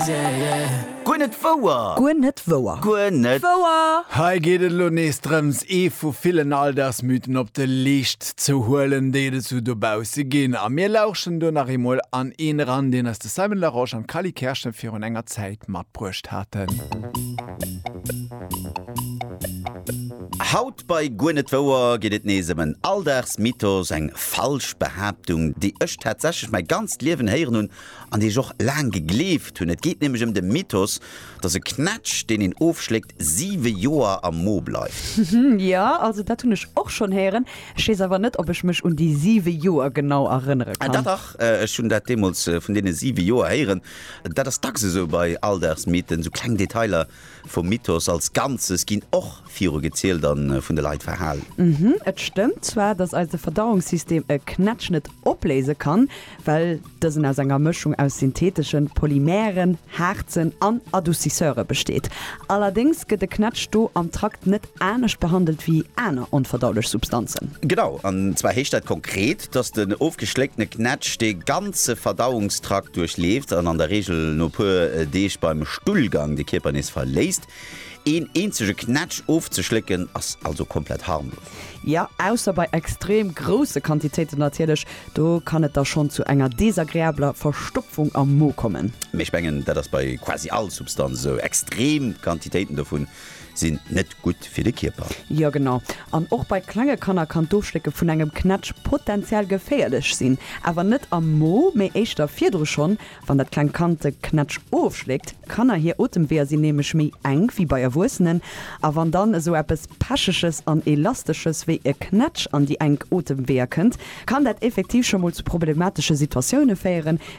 Guer net wouer! Guer net wouer! Guer net wouer! Hei geet et elo nees drëms, ee vu villen Alldagsmythen op de Leescht ze huelen, déi et esou dobausse ginn. A mir lauschen do nach eemol an een eran, deen eis de Simon Larosche an d'Cally Kerschen virun enger Zäit matbruecht haten. Haut bei Guer net wouer geet et nees ëm en Alldagsmythos, eng falsch Behaaptung, déi ech tatsächlech mäi ganzt Liewen héieren hunn an déi ech och laang gegleeft hunn, et geet nämlech ëm de Mythos, dass e Knätsch, deen een ofschléckt, siwe Joer am Mo bleift. Jo, also dat hunn ech och schonn héieren, ech weess awer net, ob ech mech un déi siwe Joer genau erënnere Ah, kann. dach, dach, ech hunn dat deemools vun deene siwe Joer héieren. Dat ass dacks esou bei Alldagsmythen, esou kleng Detailer Vum Mythos als Ganzes ginn och viru gezielt a vun de Leit verhal. Mhm, et stëmmt zwar, dass eise Verdauungssystem e Knätsch net opléise kann, well dësen aus enger Mëschung aus syntheteschen Polymeren, Haarzen an Adoucisseure besteet. Allerdéngs gëtt e Knätsch do am Trakt net anescht behandelt wéi aner onverdaulech Substanzen. Genau, an zwar heescht dat konkret, dass den ofgeschléckte Knätsch dee ganze Verdauungstrakt duerchleeft an an der Reegel no puer Deeg beim Stullgang de Kierper nees verléisst. Een eenzege Knätsch ofzeschlécken ass also komplett harmlos. Jo, ausser bei extrem grousse Quantitéiten natierlech, do kann et da schonn zu enger desagreabler Verstopfung am Mo kommen. Mee ech mengen, dat ass bei quasi all Substanz esou. Extrem Quantitéiten dovun Sinn net gutt fir de Kierper. Jo genau, an och bei klenge Kanner kann d'Ofschlécke vun engem Knätsch potenziell geféierlech sinn. Awer net am Mo, mee éischter virdru. Schonn wann dat klengt Kand de Knätsch ofschléckt, Kanner hir Otemweeër sinn nämlech méi enk wéi bei Erwuessenen, a wann dann esou eppes Pecheges an Elastesches wéi e Knätsch an déi enk Otemweeër kënnt, kann dat effektiv scho mol zu problematesche Situatioune féieren,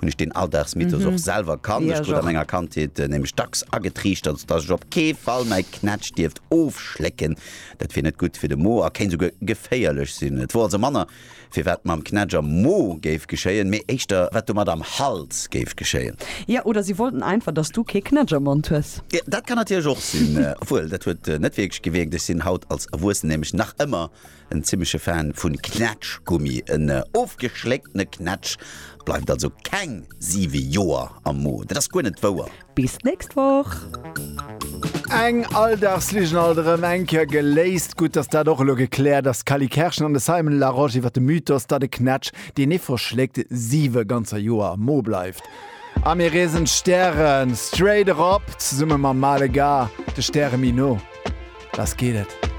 hunn ech deen Alldagsmythos och selwer kannt. Ech krut a menger Kandheet nämlech dacks agetriichtert, datt ech op kee Fall mäi Knätsch dierft ofschlécken, dat wier net gutt fir de Mo a kéint esouguer geféierlech sinn. Et wor also manner, firwat mam Knätsch am Mo géif geschéien, mee éischter, wat domat am Hals géif geschéien. Jo, oder si wollten einfach, datt s du kee Knätsch am Mond hues. Dat kann natierlech och sinn. Obwuel, dat huet net wierklech gewierkt, ech sinn haut als Erwuessen nämlech nach ëmmer En zimmeche Fan vun Knätschgummi, en ofgeschlécktene Knätsch bleift also keng 7 Joer am Mo. Dat ass guer net wouer. Bis d'nächst Woch! Eng Alldagsligen alt erëm eng Kéier geléist. Gutt, dass dat och elo gekläert ass. D'Cally Kerschen an de Simon Larosche iwwer de Mythos, datt e Knätsch, deen ee verschléckt, siwe ganzer Joer am Mo bleift. A mir reesen d'Stäre straight erop, zesumme mam Male Gars, de Stäre méi no. Lass geet et!